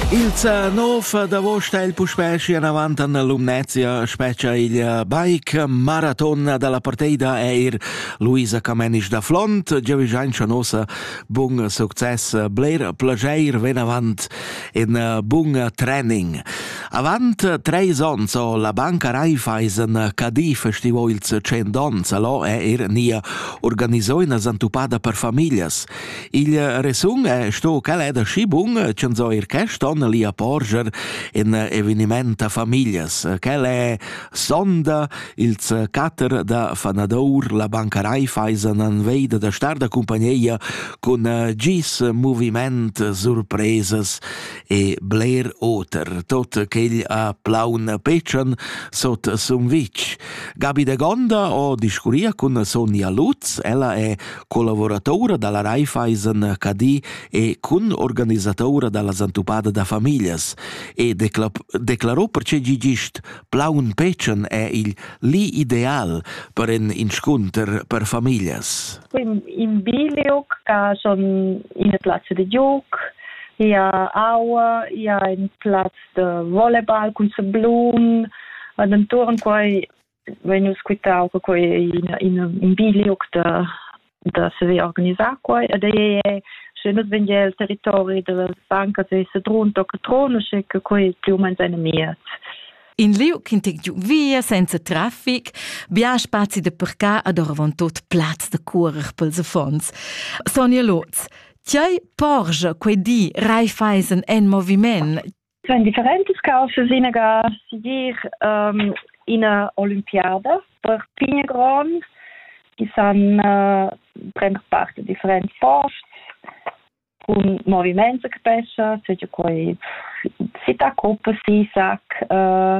Il za nov d'avost ha il puspè schi anavant an Lumnezia spetgia il bike maraton dalla parteida eir Luisa Camenisch da Flont, giavischaincha nossa bun success, bler plageir venavant in bun training. Avant treis ons ho la banca Raiffeisen Cadi festivo ils 100 ons, lo è er nia organisoina zantupada per familias. Il resun è sto ch'el è da schi bun ch'en so ir quest onn lì a porger in eveniment a famiglias. Quel è sonda ils catter da Fanadour, la banca Raiffeisen an veida da star da cumpagneia cun gis moviment surpresas e bler oter, tot quegl a plaun pechan sot Sumvitg. Gabi de Gonda o discuria cun Sonia Lutz, ella è collavurataura dalla Raiffeisen Cadi e cun-organisatura dalla Zantupada da famiglias e declarò perche gigist plaun petschen è il li ideal per in inscunter per famiglias. In biliuc ca son in plazza de gioc, ia aua, ia in plaz de volleyball cun se blum, ad enturn quai vein nus quitau che quei ei in, in, in biliuc da, da saver organisar quei ed ei è sche nus vegn el territori dalla banca se sedrun tocca trono sche che quei più o meno seine mies In liug ch'in tec giu via senza traffic, bia spazi da parcar ad oravontut plaz da curer pels affons. Sonia Lotz, Tiai porgia quei di Raiffeisen en moviment. Cun differentas causas inaga sigir um, ina olimpiada per pigna grond chi san uh, prender part in differenti forts cun moviments che pesca, seja quei sita coppa, sisac, uh,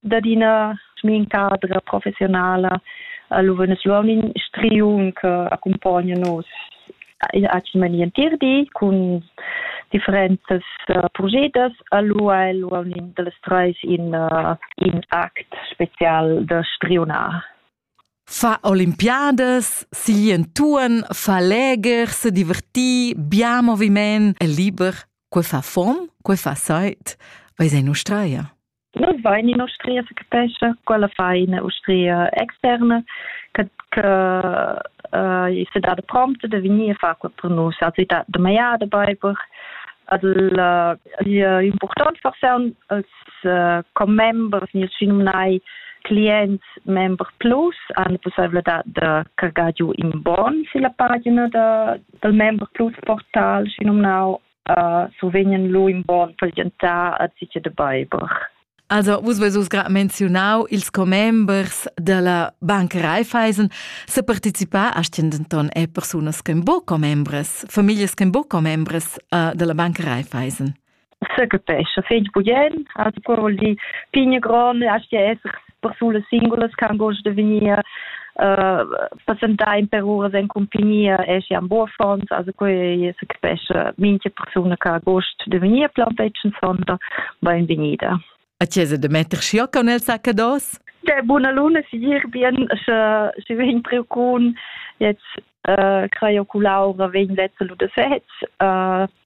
dad ina cadra professionala. Allora nus luaun in striun che accompagna nus acin entir di cun differentas uh, progetas. Allora el luaun in dals treis in, uh, in act special da striunar. Fa Olympiades, si entuorn, fa leger, se diverti, bia moviment e liber. Que fa fom, que fa seit, vai sei nustraia. Nus vein in'ustria secapescha, quella fa ina ustria externa che, che uh, se dà prompte de venir a far quel per nus. Also da, da maiada beiber. Also uh, è important for se als uh, commembers ni signai clients member plus hanno possibilità di cargare giù in bon sulla pagina de, del member plus portal, si nomnau uh, survegnan lu in bon pazientar a zice de beiber. Also, vus veis uss gra menzionau ils commembers della Bank Raiffeisen se participar a denton e persunas che bo commembres, familias che bo commembres uh, della Bank Raiffeisen. Se capesce, fegl bugen, also paroli pigne gronne, a esser persunas singulas che han gust de vegnir uh, passentar in per uras en compagnia e si an Borfonds, also quei se capesce minche persona che ha gust de venir plantetschen sonder ben venida. A chiesa de metter schioc con el saccados? Der buna luna si dir bien sche sche vegn preocun jetzt äh, creo culaura vegn letzte lu de fets uh,